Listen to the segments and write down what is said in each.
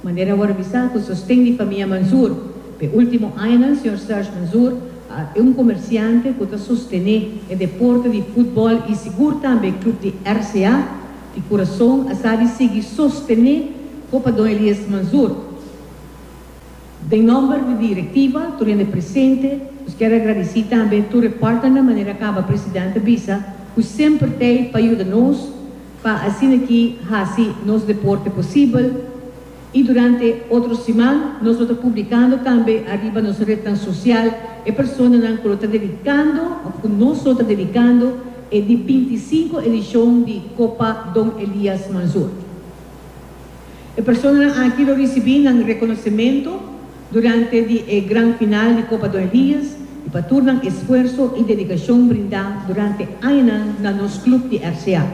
Manera a wordo bisa cu sosten di famia Manzoor pa e ultimo añanan, Sr. Serge Manzoor a e un comerciante cu ta sostene e deporte di futbol y sigur tambe e club di RCA di Curaçao a sa di sigui sostene Copa Don Elias Manzoor. Den nomber di directiva, tur hende presente, nos kier agradici tambe tur e partnernan manera caba President a bisa cu semper t'ey pa yuda nos, pa asin'aki hasi nos deporte posibel y durante otro siman nos lo ta publicando tambe ariba nos rednan social e personanan cu lo ta dedicando of cu nos lo ta dedicando e di binti i sinku edicion di Copa Don Elias Manzur. E personanan aki lo ricibi nan reconocemento. Durante di e gran final di Copa Dorheus y pa tur nan esfuerso y dedicacion brinda durante añanan na nos club di RCA.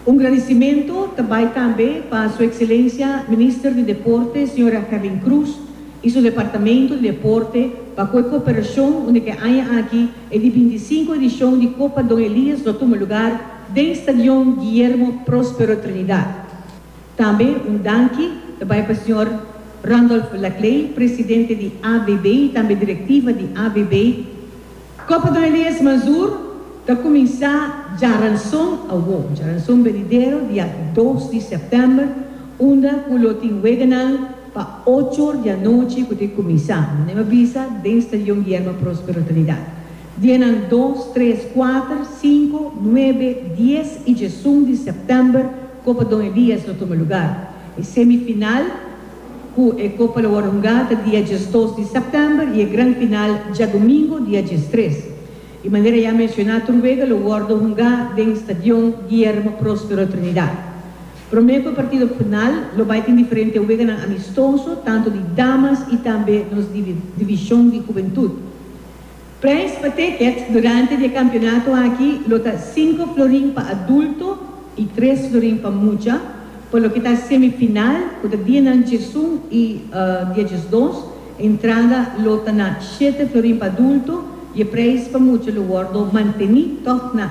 Un gradicimento ta bay tambe pa Su Excelencia Minister di Deporte Sra. Herlin Cruz y su Departamento di Deporte pa cu e cooperacion unda cu e aña aki e di binti sinku edicion di Copa Don Elias lo tuma lugar den Stadion Guillermo Prospero Trinidad. Tambe un danki ta bai pa señor Randolph Laclay, presidente di AVB y tambe directiva di AVB. Copa Don Elias Mazur ta cuminsa dja ranson awo, dja ranson benidero dia dos di september, unda cu lo tin weganan pa ocho or di anochi cu ta cuminsa, manera a bisa den Stadion Guillermo Prospero Trinidad. Dienan dos, tres, kuater, sinku, nuebe, dies i djesun di sèptèmber Copa Don Elias lo tuma lugar. E semifinal ku e kopa lo wòrdu hungá ta dia djesdos di sèptèmber i e gran final djadumingu dia djestres. Di manera ya menshoná tur wega lo wòrdu hungá den Stadion Guillermo Prospero Trinidad. Promé ku e partido final lo bai tin diferente weganan amistoso tantu di damas i tambe nos divishon di hubentud. Prijs pa tickets durante di e kampionato aki lo ta sinku florin pa adulto i tres florin pa mucha pa loke ta semifinal ku ta dia nan djesun i dia djesdos. Entrada lo ta na shete florin pa adulto i e prijs pa mucha lo wordo manteni tòg na.